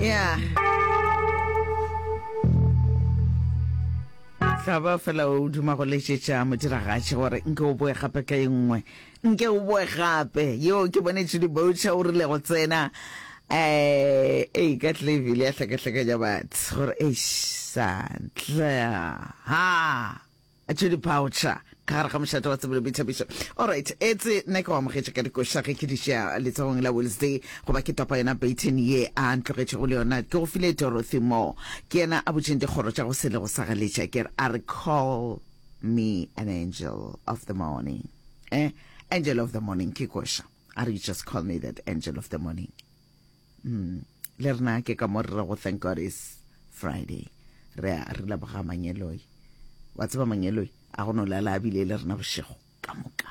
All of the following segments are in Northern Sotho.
ya hlaba fela o duma go letšetša modiragatši gore nke o boe gape ka e nngwe nke o boe gape yo ke bone tšhudi boutšha o rile go tsena eh e ka tle ebile ya hlakahlakanya batho gore eish santle ha Judy Boucher ka gare ga mošate wa tsebo le boithabišo. Alright, etse nna ke go amogetše ka dikoša ge ke di šea letsogong la Wednesday goba ke topa yona baton ye a ntlogetšego le yona. Ke go file Dorothy Moore, ke yena a butšeng dikgoro tša go sele go sa galetša. Ke re, a re, Call me an angel of the morning. Eh, angel of the morning ke koša. A re, You just call me that angel of the morning. mm. le rena ke ka mo re re go thank god is friday re a re leboga mangeloi wa tseba mangeloi a go no lala a bile le rena bošego ka moka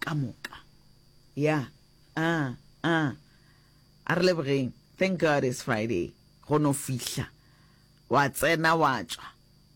ka moka ya a a a re lebogeng thank god is friday go no fihla wa tsena wa tswa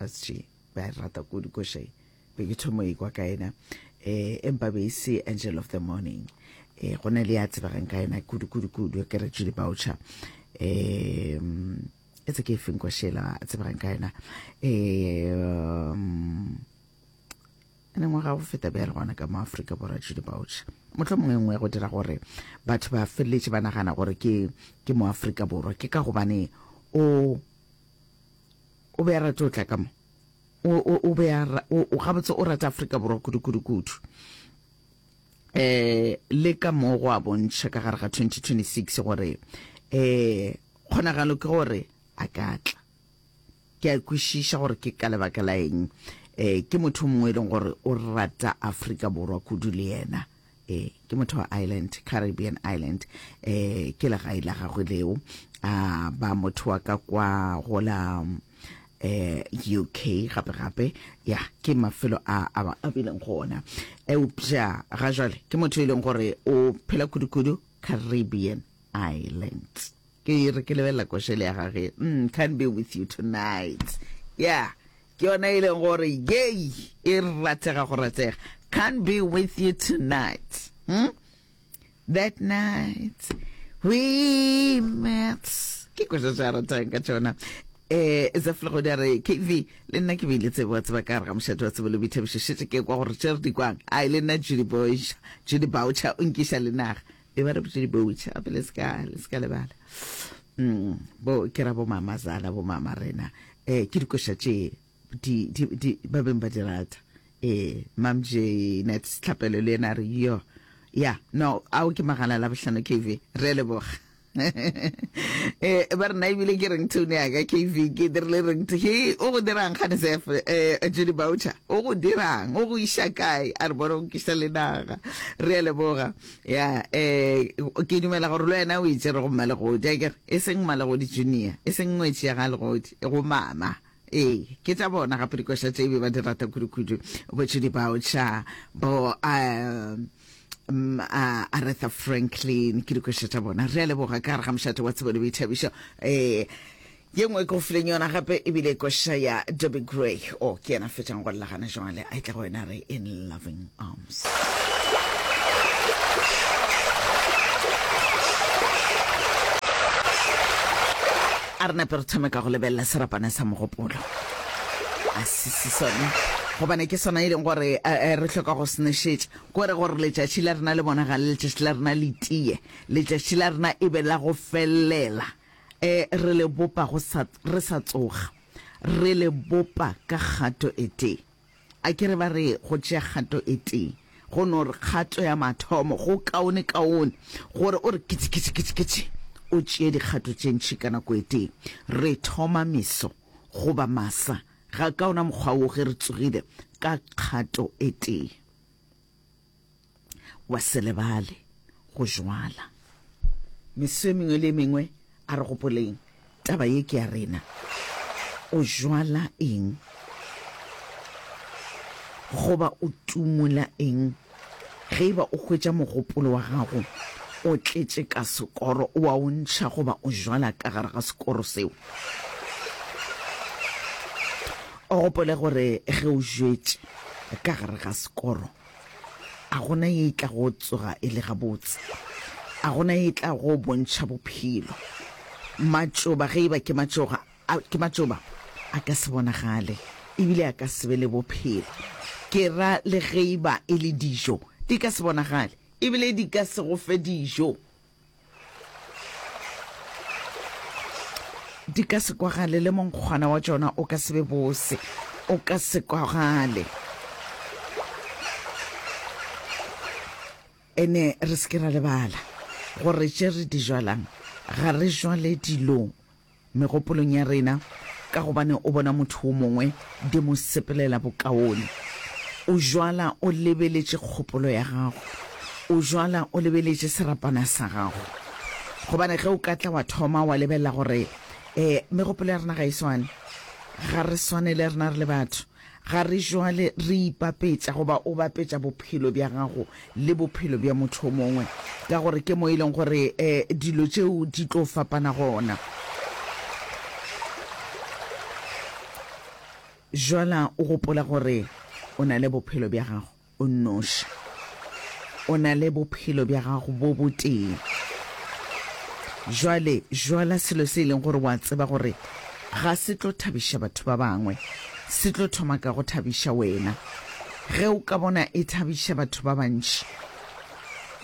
Asj ba e rata kudu koša e be ke thomo e kwa ka yena eh empa be e se angel of the morning eh go na le ya tsebagang ka yena kudu kudu kudu ke re Julie Boucher eh e tse ke e feng kwa shela a tsebagang ka yena eh um, ene ngwaga go feta bjale gona ka mo aforika borwa Julie Boucher motlho mongwe nngwe go dira gore batho ba feleletše ba nagana gore ke ke mo aforika borwa ke ka gobane o O be a rate go tla ka mo. O, o, o be a, o, o gabotse o rata Afrika Borwa kudu, kudu, kudu. Eh, le ka mo go a bontšha ka gare ga 2026 gore eh kgonagalo ke gore a ka tla. Ke a kwešiša gore ke ka lebaka la eng. Eh, ke motho mongwe e leng gore o rata Afrika Borwa kudu le yena. e ke motho wa island caribbean island e ke legae la gagwe leo a ba motho wa ka kwa go la eh UK gape gape ya ke mafelo a a ba a bileng gona eupša ga jwale ke motho e leng gore o phela kudu-kudu Caribbean Islands ke re ke lebelela košele ya gage mm, can't be with you tonight yeah Ke yona e leng gore yei e ratega go ratega. Can't be with you tonight. Hmm? That night we met. Ke kwešo tša ratang ka tšona. Eh, za fela go dira KV le nna ke bile tsebo wa tseba ka re ga mošate wa tsebo le boithabišo šetse ke kwa gore tšere di kwang a le nna Judy Boucher Judy Boucher o nkiša le naga e ba re botse diboutsha gape le seka le seka lebala mm, bo ke ra bomama zala bomama rena um ke dikoša tše ba beng ba di rata um mamje net setlhapelo le ena re yo ya no ao ke magala la bohlano kv re leboga eh ba rena ebile ke reng tone ya ka kv ke dirile reng he o go dirang gane sef um eh, jedi boucher o go dirang o go iša kae a re bone go kisa le naga re leboga ya um ke dumela gore le wena o itsere go mmalegodi a kere e seng mmalegodi junior e seng ngwetši ya ga legodi e go mama ee ke tša bona gape dikoša tše e be ba di rata kudukudu botšodi bao tša bo um um, uh, Aretha Franklin ke dikoša tša bona re a leboga ka gare ga mošate wa tsebo le boithabišo eh Ye nngwe e ke go fileng yona gape e bile koša ya Dobie Gray. O, ke yena a fetšang go lla gana jwale. A e tla go wena re In Loving Arms. A re nape re thome ka go lebelela serapana sa mogopolo. A sisi sone gobane ke sona e leng gore eh, eh, re hloka go senešetša ko re gore letšatši la rena le bonagale letšatši la rena le tiye letšatši la rena e be la go felela E, re le bopa go sa, re sa tsoga. Re le bopa ka kgato e tee. A ke re ba re go tšea kgato e tee, go no re kgato ya mathomo, go kaone kaone, gore o re kitši, kitši, kitši, kitši, o tšee dikgato tše ntši ka nako e tee. Re thoma meso, goba masa, ga ka ona mokgwa wo ge re tsogile, ka kgato e tee. wa se lebale go jwala. Meso e mengwe le e mengwe a re gopoleng taba ye ke ya rena. O jwala eng goba o tumola eng ge eba o hwetša mogopolo wa gago o tletše ka sekoro o a o ntšha goba o jwala ka gare ga sekoro seo? O gopole gore ge o jwetše ka gare ga sekoro, a gona ye e tla go tsoga e le gabotse, a gona ye e tla go bontšha bophelo. Matšoba ge e ba ke matšoga, ke matšoba a ka se bonagale ebile a ka se be le bophelo. Ke ra le ge e ba e le dijo, di ka se bonagale ebile di ka se go fe dijo. Di ka se kwagale le monkgwana wa tšona o ka se be bose, o ka se kwagale. Ene re se ke ra lebala gore tše re di jwalang ga re jwale dilong megopolong ya rena, ka gobane o bona motho wo mongwe di mo sepelela bokaone. O jwala o lebeletše kgopolo ya gago, o jwala o lebeletše serapana sa gago. Gobane ge o ka tla wa thoma wa lebelela gore um megopolo ya rena ga e swane, ga re swane le rena re le batho, Ga re jwale re ipapetša goba o bapetša bophelo bja gago le bophelo bja motho o mongwe, ka gore ke mo e leng gore dilo tšeo di tlo fapana gona. Bjala o gopola gore o na le bophelo bja gago. O nnoši. O na le Bophelo bja gago bo botee. Bjale, bjala selo se e leng gore o a tseba gore ga se tlo thabiša batho ba bangwe, se tlo thoma ka go thabiša wena. Ge o ka bona e thabiša batho ba bantši,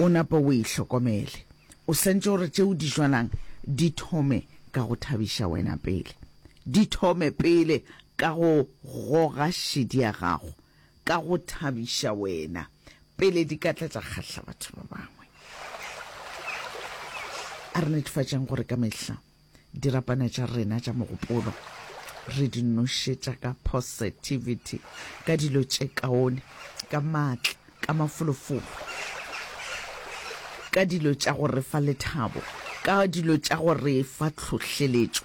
o napa o e hlokomele. O santše gore tše o di bjalang di thome ka go thabiša wena pele. Di thome pele ka go goga šedi ya gago. ka go thabiša wena pele di ka tla tša kgahla batho ba bangwe. A re netefatšeng gore ka mehla dirapana tša rena tša mogopolo re di nošetša ka positivity, ka dilo tše kaone, ka maatla, ka mafolofolo, ka dilo tša go re fa lethabo, ka dilo tša go re fa tlhohleletšo.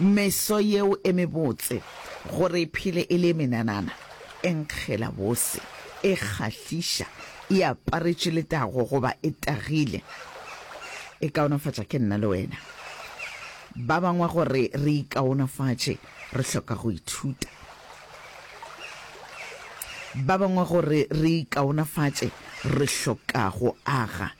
Meso yeo e mebotse, gore e phele e le e menanana, e nkgela bose, e kgahliša, e aparetše letago goba e tagile, e kaonafatša ke nna le wena ba bangwe. Gore re ikaonafatše, re hloka go ithuta ba bangwe. Gore re ikaonafatše, re hloka go aga.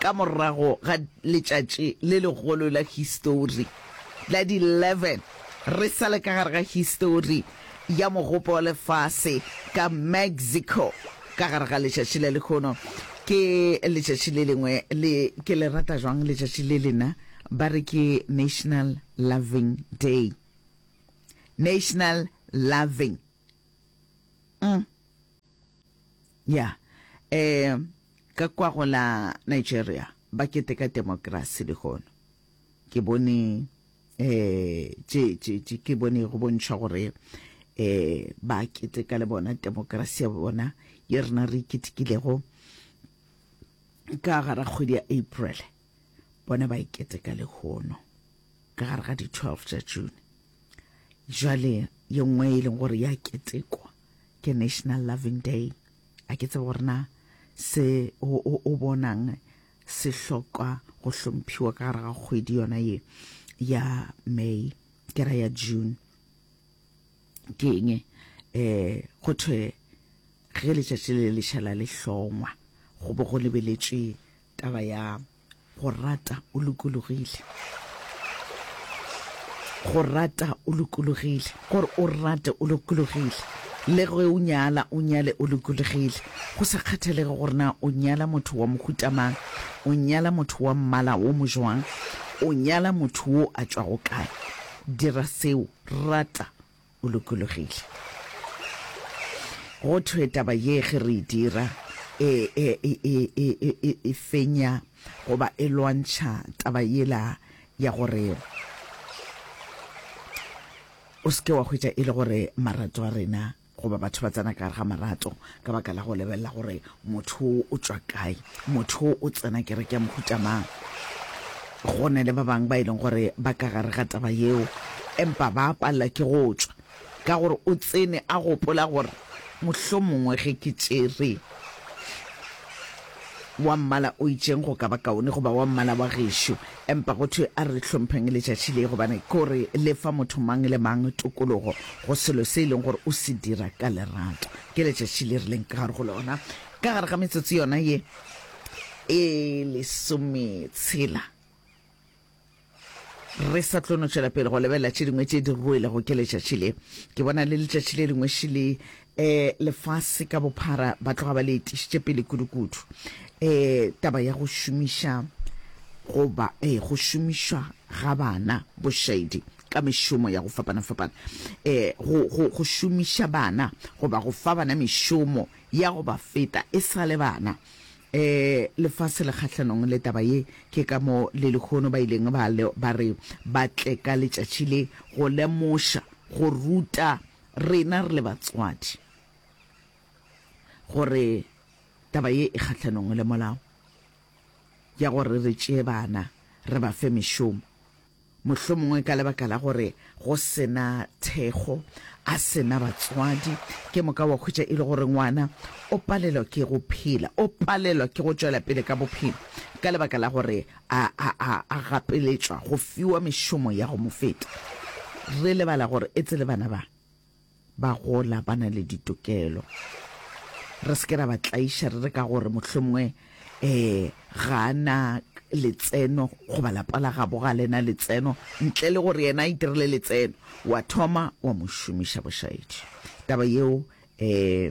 Ka morago ga letšatši le legolo la histori, la di 11 re sa le ka gare ga histori ya mogopo wa lefase ka Mexico, ka gare ga letšatši la lehono, ke letšatši le lengwe le ke le rata jwang letšatši le lena, ba re ke National Loving Day. National Loving. Mm. Yeah. Eh, ka kwa go la Nigeria ba keteka demokrasi lehono ke bone eh tše tše tše ke bone go bontšha gore eh ba keteka le bona demokrasi ya bona ye rena re iketekilego ka gara kgwedi ya April bona ba iketeka lehono ka gare ga di 12 tša June. Jwale ye nngwe e leng gore ya ketekwa ke National Loving Day. A ke tsebe gore na se o, o, o bonang se hloka go hlomphiwa ka gare ga kgwedi yona ye ya May ke ra ya June ke eng eh go thwe ge letšatši le lešala le hlongwa go bo go lebeletšwe taba ya Go rata o lokologile. Go rata o lokologile. Gore o rate o lokologile. Le ge o nyala, o nyale o lokologile. Go sa kgathalege gore na o nyala motho wa mohuta mang, o nyala motho wa mmala wo mojwang, o nyala motho wo a tšwago kae, dira seo, rata. o lokologile. Go thwe taba ye ge re e dira e, e, e, e, e, e, e, e fenya goba e lwantšha taba yela ya gore o seke wa hwetša e le gore marato a rena goba batho ba tsena ka gare ga marato ka baka la go lebelela gore motho o tswa kae motho o tsena kereke ya mohuta mang go ne le ba bangwe ba e leng gore ba ka gare ga taba yeo empa ba palela ke go tswa ka gore o tsene a gopola gore mohlomongwe ge ke tšere wa mmala o itšeng go ka ba kaone goba wa mmala wa gešo. Empa go thwe a re hlompheng letšatši le, gobane ke gore le fa motho mang le mang tokologo go selo se e leng gore o se dira ka lerato. Ke letšatši le re leng ka gare go lona, ka gare ga metsotso yona ye e lesometshela. re sa tlo no tšwela pele go lebelela tše dingwe tše di ruelego ke letšatši le ke bona le letšatši le lengwe šele um lefase ka bophara ba tloga ba le etišitše pele kudukudu um taba ya go šomiša goba um go šomišwa ga bana bošaedi ka mešomo ya go fapana-fapana um go go šomiša bana goba go fa bana mešomo ya go ba feta e sa le bana E, lefase le kgahlanong le taba ye. Ke ka moo le lehono ba ileng ba, ba re ba tle ka letšatši le, go lemoša, go ruta rena re le batswadi, gore taba ye e kgahlanong le molao, ya gore re tšee bana re ba fe mešomo. Mohlomongwe ka lebaka la gore go se na thekgo, a se na batswadi, ke moka wa hwetša e le gore ngwana o palelwa ke go phela, o palelwa ke go tšwela pele ka bophelo ka lebaka la gore a, a, a, a gapeletšwa go fiwa mešomo ya go mo feta. Re lebala gore etse le bana ba. Ba gola ba na le ditokelo. Re se ke ra ba tlaiša re re ka gore mohlomongwe um ga a na letseno goba lapa la gabo ga le na letseno ntle le gore yena a itirele letseno, wa thoma wa mo šomiša bošaedi. Taba yeo um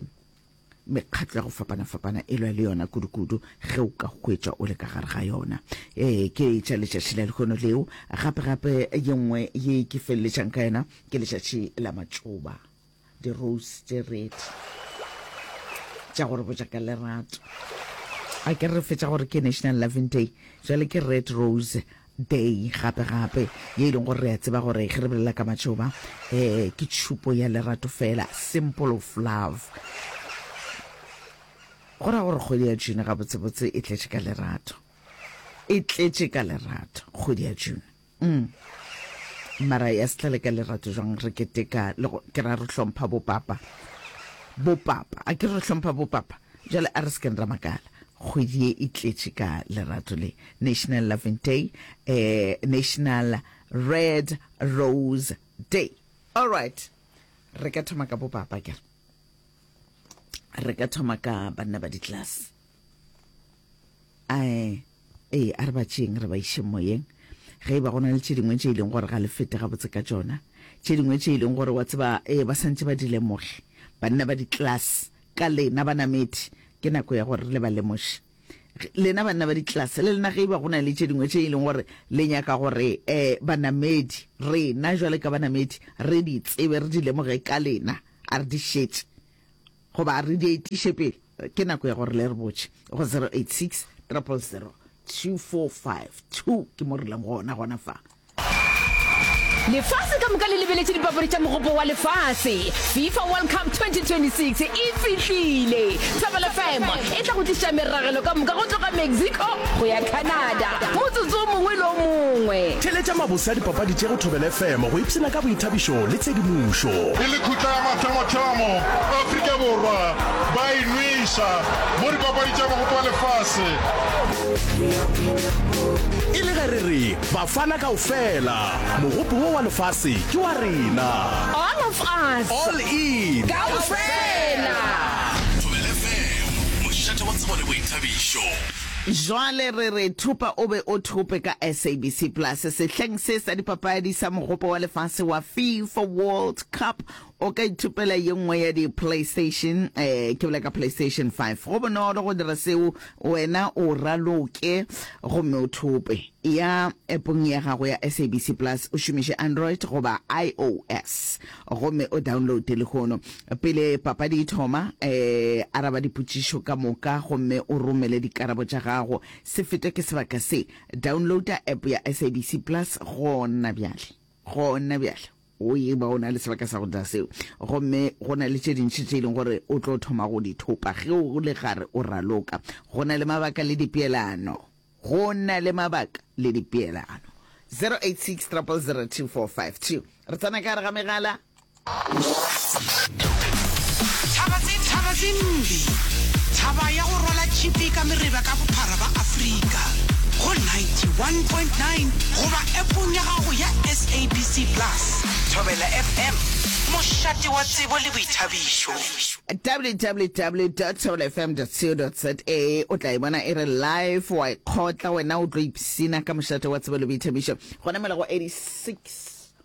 mekgatlo ya go fapana-fapana e lwa le yona kudu-kudu ge o ka hwetša o le ka gare ga yona ee ke e tša letšatši la lehono leo gape-gape ye nngwe ye ke feleletšang ka yona ke letšatši la matšoba di-rose tše redi tša gore botša ka lerato a ke re fetša gore ke national loving day jale ke red rose Day gape gape, ye e leng gore re a tseba gore ge re bolela ka matšoba eh ke tšhupo ya lerato fela, simple of love. Go ra gore kgwedi ya June gabotsebotse e tletše ka lerato, e tletše ka lerato kgwedi ya June. Mm. Mara ya setlale ka lerato jwang re keteka le go ke ra re hlompha bopapa bopapa a ke re hlompha bopapa jale a re se ke ra makala kgwedi ye e tletše ka lerato le National Loving Day, eh, National Red Rose Day. All right. Re ka thoma ka bo papa ke. Re ka thoma ka banna ba di class. Ai, eh, a re ba tšeng re ba iše moyeng. ge e ba gona le tše dingwe tše e leng gore ga le fete gabotse ka tšona tše dingwe tše e leng gore wa tseba e ba santse ba di lemoge banna ba di-class ka lena banamedi ke nako ya gore le ba lemoše lena banna ba ditlelase le lena ge e ba go na le tše dingwe tše e leng gore le nyaka gore um banamedi rena jwale ka banamedi re di tsebe re di lemoge ka lena a re di šetse goba re di etiše pele ke nako ya gore le re botše go 086 triple 0 2452 ke mo re leng gona gona fa Lefase ka moka le lebeletše dipapadi tša mogopo wa lefase. FIFA World Cup 2026 e fihlile. Thobela FM e tla go tliša meragelo ka moka go tloga Mexico go ya Canada motsotso o mongwe le o mongwe. Theletša mabose a dipapadi tše go Thobela FM go ipshina ka boithabišo le tshedimošo. Ke lekhutla ya mathomo-thomo Afrika Borwa ba e nweša mo dipapadi tša mogopo wa lefase. E le ge re re Bafana kaofela, Mogopo wo wa lefase ke wa rena! All of us! All in! Kaofela! Thobela FM, mošate wa tsebo le boithabišo. Jwale re re thupa o be o thope ka SABC Plus sehleng se sa dipapadi sa Mogopo wa Lefase wa Fifa World Cup o ka ithupela ye nngwe ya di-playstation eh ke bola ka playstation 5 go bonolo go dira seo wena o raloke gomme o thope ya epong ya gago ya sabc plus o šomiše android goba ios gomme o downloade lehono pele papadi e thoma eh araba dipotšišo ka moka gomme o romele dikarabo tša gago se fetwe ke sebaka se downloada app ya sabc plus gona bjale gona bjale O e ba o na le sebaka sa go dira seo, gomme go na le tše dintši tše e leng gore o tlo thoma go di thopa ge o le gare o raloka. Go na le mabaka le dipeelano. Go na le mabaka le dipeelano. 086 000 2452 Re tsena ka gare ga megala. Thaba tse thaba tse mbi. Thaba ya go rwala tšhipi ka mereba ka bophara ba Afrika go 91.9 goba appong ya gago ya SABC Plus. Thobela FM, mošate wa tsebo le boithabišo. www dot thobela fm dot co dot za o tla e bona e re live wa e kgotla wena o tlo ipsina ka mošate wa tsebo le boithabišo gona mela go 86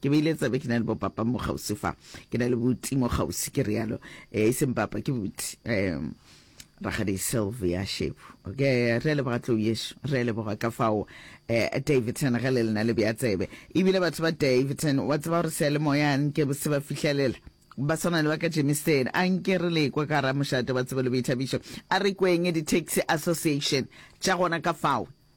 Ke beile tsebe, ke na le bopapa mo kgauswi fa, ke na le buti mo kgauswi, ke realo, eh, e seng papa, ke buti, eh, Rakgadi Sylvia Shepu. Okay, re a leboga tlou yešo, re a leboga ka fao, eh, Davidson, ge le lena le bea tsebe. Ebile batho ba Davidson, wa tseba gore seyalemoya nke se ba fihlelela, ba swana le ba ka Germiston, a nke re le kwa ka gara mošate wa tsebo le boithabišo, a re kweng di-taxi association tša gona ka fao.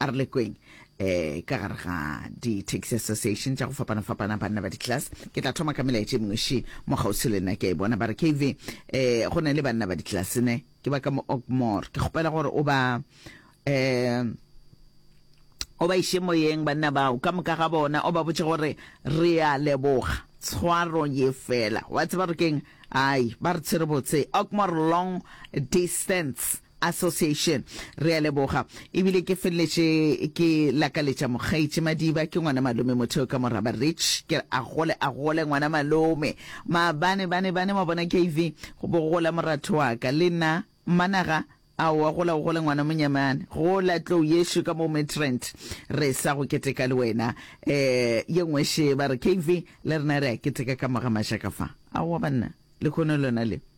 A re lekweng um ka gare ga di-taxi association tša go fapana-fapana banna ba di-class ke tla thoma ka melaetša e mengwe še mo kgauswi le nna ke a e bona ba re kv um eh, go na le banna ba di-class ne ke ba ka mo okmore ke kgopela gore o ba um o ba iše moyeng banna bao ka moka ga bona o ba botse gore re a leboga tshwaro ye fela wa tseba gore keng ai ba re tshwere botse okmore long distance Association. Re a leboga. E bile ke feleletše ke lakaletša mokgaetši Madiba, ke ngwana malome motheo ka moraba Rich. Ke re a gole, a gole ngwana malome. Maabane, bane, bane, wa bona KV, go bo go gola moratho wa ka. Le nna, Mmanaga, aowa gola o gole ngwana monyamane. Gola tlou yešo ka mo Midrand. Re sa go keteka le wena. Eh, ye nngwe še ba re KV, le rena re a keteka ka mo ga Majaka fa. Aowa banna, lehono lona le.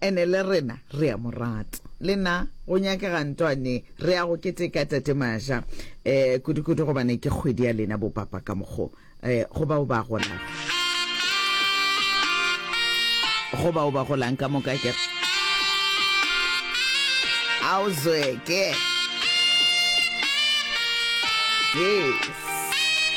Ene le rena re a mo rata. Le na go nyakega ntwane re ya go keteka Tate Maja eh, kudu-kudu gobane ke kgwedi ya lena bo papa ka mokgo eh, go bao ba golang. Go bao ba golang ka moka ke a o zweke. Yes.